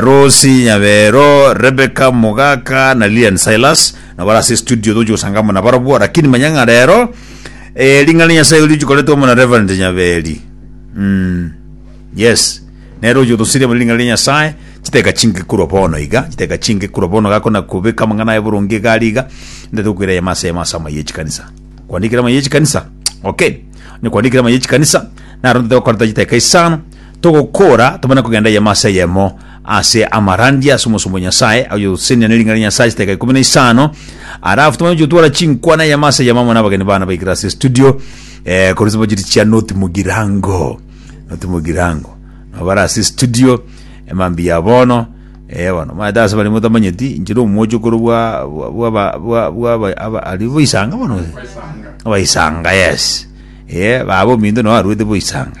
Rosie Nyabero, Rebecca Mogaka na Lilian Silas nabo bare ase studio togochia gosanga amo nabarobwo lakini manya ng'a rero eh, ring'ana ria Nyasaye richikoretwe amo na Reverend Nyaberi mm. yes nero oyo otosirie amo ring'ana ria Nyasaye chiteka chinge korwa bono iga chiteka chinge korwa bono gakona kobeka amang'ana aye boronge iga ari iga ndete gokwera yama ase yama ase amaye echikanisa kwandikire amaye echikanisa okay ne kwandikire amaye echikanisa naro ndete gokoreta chiteka isano Togokora tomanye kogenda eyemo ase eyemo ase amarandia ase omosomba o Nyasae, oyosenia ne ring'ana ria Nyasae chidakika ikomi na isano, arafu tomanye gotwara chinkwana eyemo ase eyemo amo nabageni bana baikire ase estudio, eh, korwa chibojiri chia Noti Mugirango. Noti Mugirango. Nabo bare ase estudio, emambia ya bono, eh, bono, maete ase baria motamanyeti, inche nomwocho korwa bwa- bwa- bwaba- bwa- bwaba- aba- ari boisanga bono? Abaisanga, yes. Eh, baba ominto nao arwete boisanga.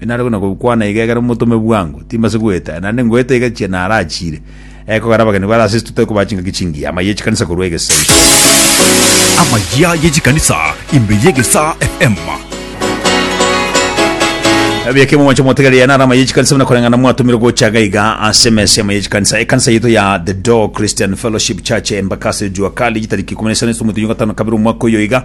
Inare buna gokwana iga ekero motome bwango, timbase goeta, naende ngoeta iga chiana arachiire. Ekogera abageni bare ase totari kobaa chingaki chingiya, amaiyo ye chikanisa korwa egesaku. Amaiya ye chikanisa imbe y'egesaa eema. Ebieke momoche motegereri aya naro amaiyo ye chikanisa buna koreng'ana mwatomirwe gocha iga iga ase emesa y'amaiyo ye chikanisa. Ekanisa yaito ya The Door Christian Fellowship Church Embakasi Jua Kali chitariki ikomi na isano ase omwezi oyogatano kabere omwaka oyo iga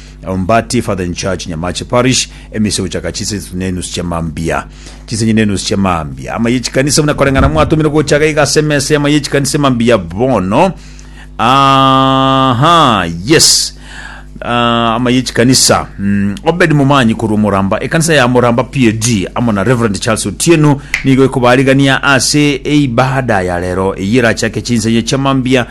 Ombati, Father in Charge, Nyamache Parish, emise gochaka chinsa isatu na enusu chia mambia. Chinsa inye na enusu chia mambia. Ama ye chikanisa buna koreng'ana mwatomire gocha iga iga ase emesa y'ama ye chikanisa mambia bono. Aha, yes. Ah, ama ye chikanisa. Mm, Obed Momanyi korwa Muramba. Ekanisa ya Muramba PAD amo na Reverend Charles Otieno nigo ekobarigania ase eibada ya rero eyerachake chinsa inye chia mambia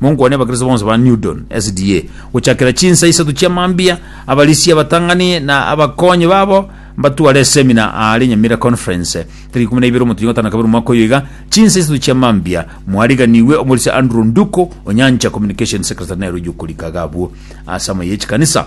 Monkwane abakristo bonsi ba Newdon SDA gochakera chinsa isato chia mambia, abarisia, abatang'ani, na abakonyi babo mbatware esemina aare Nyamira Conference tariki ikomi na ibere omotuya gatano na kabere omwaka oyo iga. Chinsa isato chia mambia mwariganiwe omorisia Andrew Nduko, Onyancha Communication Secretary, Nairobi, okorika iga abwo ase amaye ye chikanisa.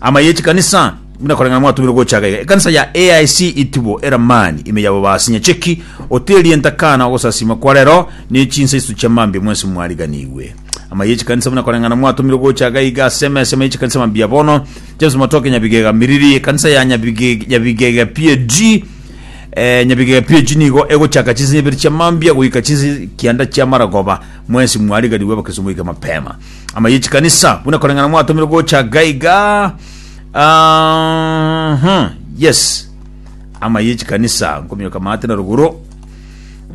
Ama ye chikanisa buna koreng'ana mwatumire gochaga iga. Ekanisa ya AIC Itubo eramani ime yabo baasi nyacheki ote erienta kana ogosasima kwa rero ne chinsa isatu chia mambia mwensi mwariganigwe. Ama ye chikanisa buna koreng'ana mwatumire gochaga iga ase emesemo ye chikanisa mambia bono James Matoke Nyabigega Miriri ekanisa ya Nyabige- Nyabigega PAG eh, nyabigega pg nigo egochaka chinsinye ibere chia mambia goika chinsi kianda chia maragoba mwensi mwariganigwe abakristo moike mapema ama ye chikanisa buna koreng'ana mwatomire gocha gaiga Ah, huh, yes ama ye chikanisa nkomioka mate na ruguru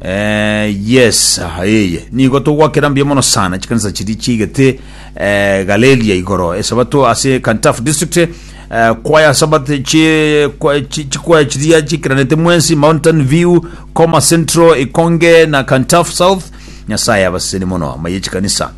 Eh, yes aha eye nigo togwakera mbuya mono sana chikanisa chiri chiigete eh, galeria igoro esabato ase kantaf district eh, kwaya sabat chi- kwa- chi- chikwaya chiria chikiranete mwensi mountain view coma central ikonge na kantaf south nyasaye abaseni mono amaye chikanisa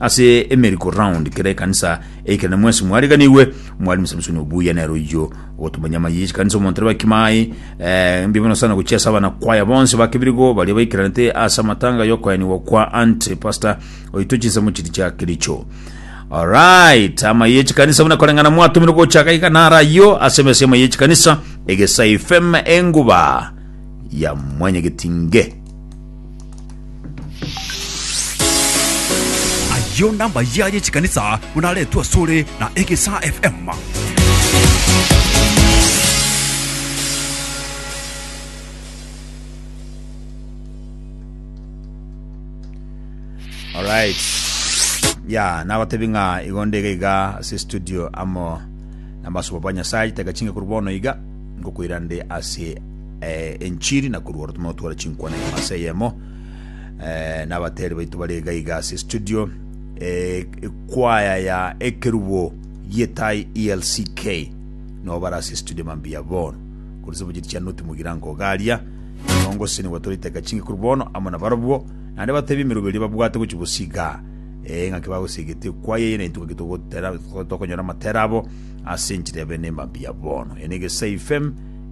Ase emeriko round kera ekanisa eikere na mwesi mwariganigwe Mwalimu Samsoni Obuya nero oyio ogotomanya amayi y'echikanisa omonto reba kimai eh, mbibe no sana gochia ase abana kwaya bonsi bakebirigo baria baikiranete ase amatanga y'okoyanigwa kwa Aunt Pastor oito chinsemo chiri chia Kericho Alright, amayi y'echikanisa buna koreng'ana mwatomire gochaka iga nara ayio ase emesa y'amayi y'echikanisa egesai fm enguba ya mwenyegetinge Ayio nambayia y'echikanisa buna aretwe asore na Egesaa FM. Alright. Ya, nagotebi ng'a igo ndege iga ase studio amo namasuba ba Nyasaye teka chinge kuri bono iga ngokoira nde ase eh, enchiri na korwa oro tomotwara chinkwana imo ase eyemo eh, n'abateri baito bare iga iga ase studio eh, ekwaya ya ekerubo gietai elck no bara ase studio mambia bono korisa bujiri chia noti mugira ngogaria nongo sini gwatoriteka chingi kuru bono amo na barobwo nande batebi emerubo eria babwate gochi bosiga eh, ng'aki bagosigete ekwaya eye naintu ng'aki togotera- tokonyora amatera abo ase enchiri ya bene mambia bono ene gesa ifem